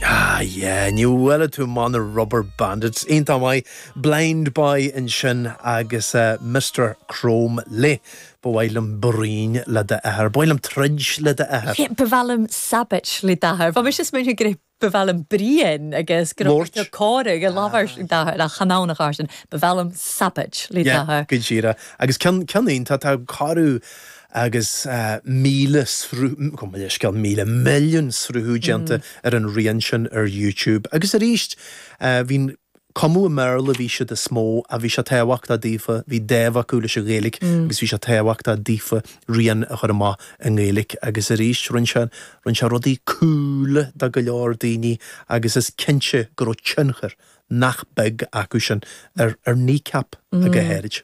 Ah yeah, níl a fhios an bhfuil tú, maith na Rubberbandits, iontach maith, Blindboy ansin agus eh, Mister Chrome leis, ba mhaith liom bruíon le d'athair, ba mhaith liom troid le d'athair. Yeah, ba mhaith liom Sabbatch le d'athair, bhí mise is muintir go raibh, ba mhaith liom bruíon agus go raibh Mort. muintir Cora go labhair siad d'athair ach chanamh na Carson, ba mhaith liom Sabbatch le d'athair. Go díreach. Agus ceann, ceann iontach, tá Cora, agus míle sruth, gabh mo leithscéal, míle milliún sruthú déanta ar an rian sin ar YouTube. Agus arís, bhíodh, ag cumadh i mBéarla bhí siad níos mó ach bhí sé tábhachtach daofa, bhí dáimh acu leis an Ghaeilge agus bhí sé tábhachtach daofa rian a chur amach i nGaeilge. Agus arís, rinne sé, rinne sé rudaí cool do go leor daoine agus is cinnte go raibh tionchar nach beag acu sin ar Kneecap go háirid.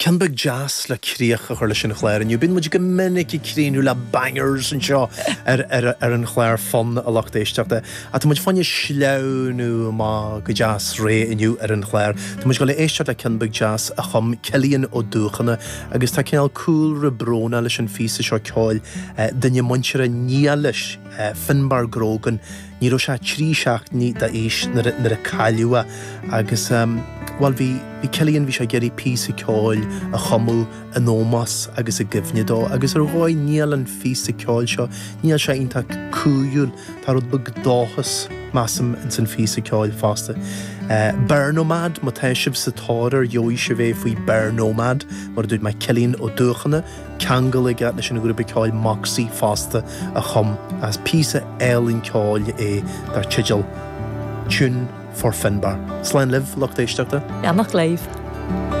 Ceann beag deas le críoch a chur leis an chlár inniu. Bíonn muid go minic ag críochnú le bangers anseo ar an chlár Fonn, a lucht éisteachta, ach tá muid chun sleamhnú amach go deas réidh inniu ar an chlár. Tá muid ag dul a éisteacht le ceann beag deas a chum Cillian Ó Dúchana agus tá cineál cúlra brónach leis an phíosa seo ceoil, duine muinteartha dena ghaolta, Finbar Grogan, Ní raibh sé trí seachtainí d'aois nuair a cailleadh é agus, bhuel, bhí Cillian, bhí sé ag iarraidh píosa ceoil a chumadh in ómós agus i gcuimhne dó agus ar dhóigh níl an píosa ceoil seo, níl sé iontach cumhúil, tá rud beag dóchais, measaim, ins an phíosa ceoil fosta. Bear Nomad, má tá sibh sa tóir air gheobhaidh sibh é faoi Bear Nomad, mar a dúirt mé, Cillian Ó Dúchana. ceangal aige leis an ghrúpa ceoil Moxie fosta a chum agus píosa álainn ceoil é dar teideal 'Tune for Finbar'. Slán libh, lucht éisteachta! Beannacht libh.